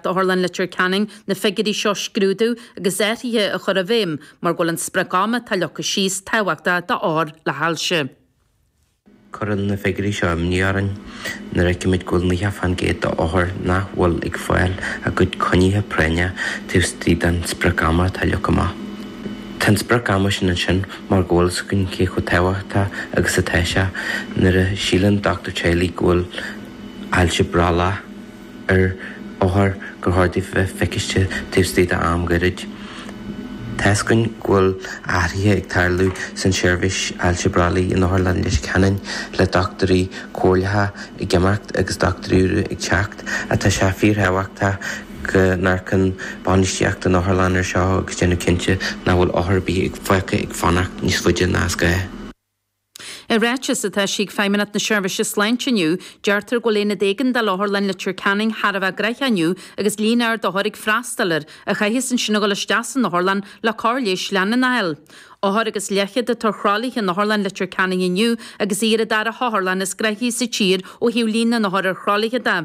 D'Otharlann Leitir Ceanainn na figiúirí seo scrúdú agus athruithe a chur i bhfeidhm mar go bhfuil an sprioc ama atá leagtha síos tábhachtach d'othair le hailse. Cuireann na figiúirí seo imní orainn nuair a fheicimid go bhfuil 90% d'othair nach bhfuil ag fáil a gcuid coinnithe práinne taobh istigh den sprioc ama atá leagtha amach. Tá an sprioc ama sin ansin mar go bhfuil a fhios againn cé chomh tábhachtach agus atá sé nuair a síleann dochtúir teaghlaigh go bhfuil ailse brollaigh. ar othar gur chóir di bheith feiciste taobh istigh d'am goirid. Tá's againn go bhfuil athruithe ag tarlú san tseirbhís ailse brollaigh in Otharlann Leitir Ceanainn le dochtúirí comhairleacha ag imeacht agus dochtúirí úra ag teacht ach tá sé fíor thábhachtach go n-amharcann bainistíocht an otharlann ar seo agus déanamh cinnte nach bhfuil othar ar bith fágtha ag fanacht níos faide ná is gá. I ráiteas atá eisithe ag Feidhmeannacht na Seirbhíse Sláinte inniu, deirtear go bhfuil Aonad Éigeandála Otharlann Leitir Ceanainn thar a bheith gnoitheach inniu agus líon ard othar ag freastal air a chaitheas ansin a dhul isteach san otharlann le cóir leighis leanúnach a fháil. Ochtar agus leathchéad othar ar thralaithe in Otharlann Leitir Ceanainn inniu agus í ar an dara hotharlann is gnoithí sa tír ó thaobh líon na n-othar ar thralaithe de.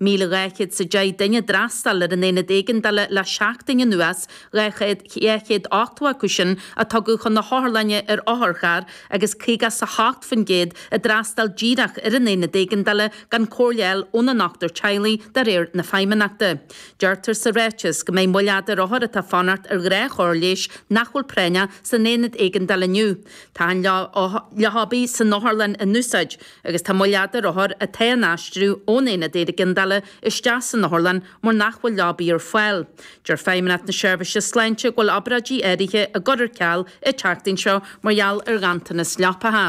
Míle dhá chéad is a deich duine a d'fhreastail ar an Aonad Éigeandála le seachtain anuas, dhá chéad, dhá chéad ochtó acu sin a tugadh chun na hotharlainne ar otharcharr agus caoga is a hocht faoin gcéad a d'fhreastail díreach ar an Aonad Éigeandála gan comhairle a fháil óna ndochtúir teaghlaigh, de réir na Feidhmeannachta. Deirtear sa ráiteas go mbeidh moill fhada ar othair atá ag fanacht ar ghnáthchóir leighis nach bhfuil práinneach san Aonad Éigeandála inniu. Tá achan leabaidh san otharlann in úsáid. Agus tá moill fhada ar othair atá á n-aistriú ón aonad éigeandála isteach san otharlann mar nach bhfuil leabaí ar fáil. Deir Feidhmeannacht na Seirbhíse Sláinte go bhfuil obráidí áirithe á gcur ar ceal an tseachtain seo mar gheall ar ghanntanas leapacha.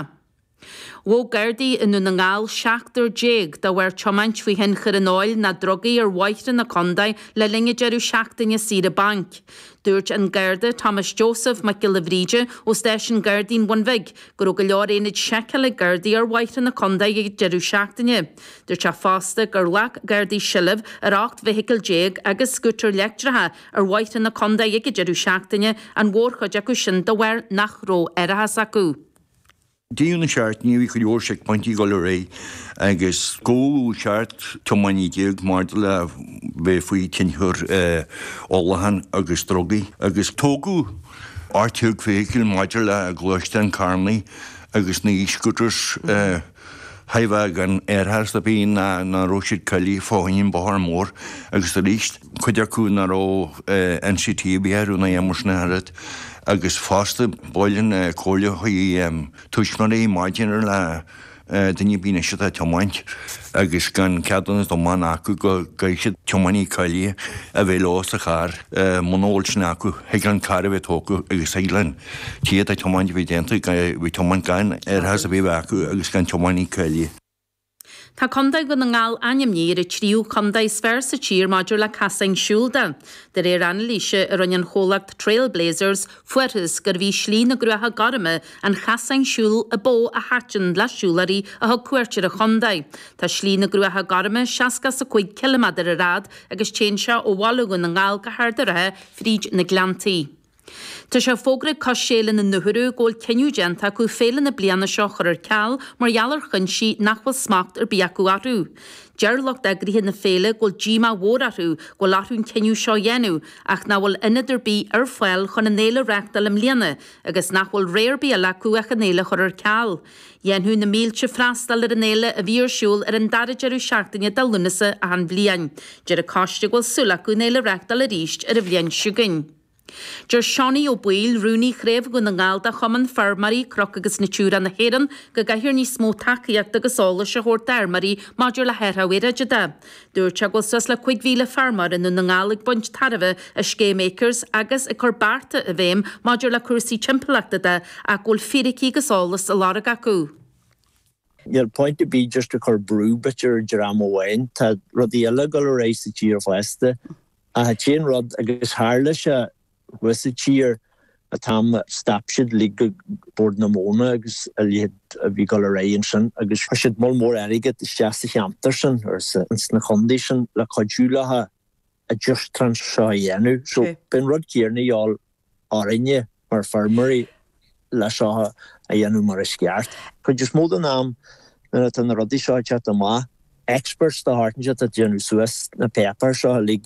Ghabh Gardaí i nDún na nGall seachtar déag de bharr tiomáint faoi thionchar an óil ná drugaí ar bhóithre na contae le linn an deireadh seachtaine saoire bainc. Dúirt an Garda Thomas Joseph Mac Giolla Bhríde ó stáisiún Gardaí an Bhun Bhig go raibh go leor aonaid seiceála ag Gardaí ar bhóithre na contae ag an deireadh seachtaine. Dúirt sé fosta gur ghlac Gardaí seilbh ar 18 bhfeithicil agus scútair leictreacha ar bhóithre na contae ag an deireadh seachtaine, an mhórchuid acu sin de bharr nach raibh árachas acu. Deireadh na seachtaine bhí go leor seicphointí ag dul ar aghaidh agus gabhadh seacht tiománaí déag maidir le bheith faoi tionchar ólachán agus drugaí agus tógadh ocht déag feithicil maidir le gluaisteáin carrannaí agus na e-scooters haifeadh gan árachas de bhrí ná raibh siad cáilithe fá choinne an bóthar mór agus arís cuid acu ná raibh NCT ar bith orthu ná aon sin ar fhad agus fosta ba mhaith liom comhairliú chuig tuismitheoirí maidir le duine ar bith anois atá ag tiomáint agus gan ceadúnas tiomána acu go gcaithfidh siad tiománaí cáilithe a bheith leo sa charr. Muna bhfuil sin acu, thig an carr a bheith tógtha agus thig an té atá ag tiomáint a bheith déanta as a bheith ag tiomáint gan árachas a bheith acu agus gan tiománaí cáilithe. Tá Contae Dhún na nGall ainmnithe ar an tríú chontae is fearr sa tír maidir le casáin siúil de. De réir anailíse a rinne an chomhlacht Trail Blazers, fuarthas gurbh í Slí na gCruacha Gorma an casán siúil ba mhó a thaitin le siúlóirí a thug cuairt ar an chontae. Tá Slí na gCruacha Gorma seasca is a cúig ciliméadar ar fhad agus téann sé ó Bhaile Dhún na nGall go hArd a' Rátha fríd na Gleanntaí. Tá sé fógraithe ag coiste Fhéile na nDúthairU go bhfuil cinneadh déanta acu féile na bliana seo a chur ar ceal mar gheall ar chuinsí nach bhfuil smacht ar bith acu orthu. Deir lucht eagraithe na féile go bhfuil díomá mhór orthu go bhfuil orthu an cinneadh seo a dhéanamh ach nach bhfuil ionad ar bith ar fáil chun an fhéile a reachtáil i mbliana, agus nach bhfuil rogha ar bith eile acu ach an fhéile a chur ar ceal. Dhéanfadh na mílte freastal ar an fhéile a bhí ar siúl ar an dara deireadh seachtaine de Lúnasa achan bhliain. Deir an coiste go bhfuil súil acu an fhéile a reachtáil arís ar an bhliain seo chugainn. Deir Seánie Ó Baoill, rúnaí chraobh Dhún na nGall de Chumann Feirmeoirí Cnoc agus Natura na hÉireann, go gcaithfear níos mó tacaíochta agus eolais a thabhairt d'fheirmeoirí maidir le hathrú aeráide de. Dúirt sé go bhfuil suas le 5,000 feirmeoir i nDún na nGall ag baint tairbhe as Scéim Acres agus ag cur bearta i bhfeidhm maidir le cúrsaí timpeallachta de ach go bhfuil fíricí agus eolas á lorg acu. Níl point ar bith just ag cur brú duit ar dhream amháin. Tá rudaí eile ag dul ar aghaidh sa tír fosta. Ach an t-aon rud, agus tharla sé thuas sa tír an t-am a stop siad uilig Bord na Móna agus a leithéid a bhí ag dul ar aghaidh ansin agus chuir siad moll mór airgead isteach sa cheantar sin agus ins na contaetha sin le cuidiú leofa an transition seo a dhéanamh so beidh an rud céarna a dhíobháil orainne mar feirmeoirí le seo a dhéanamh mar is ceart. Cuid is mó den am nuair atá na rudaí seo ag teacht amach experts de shórt inteacht ag déanamh suas na páipéir seo uilig,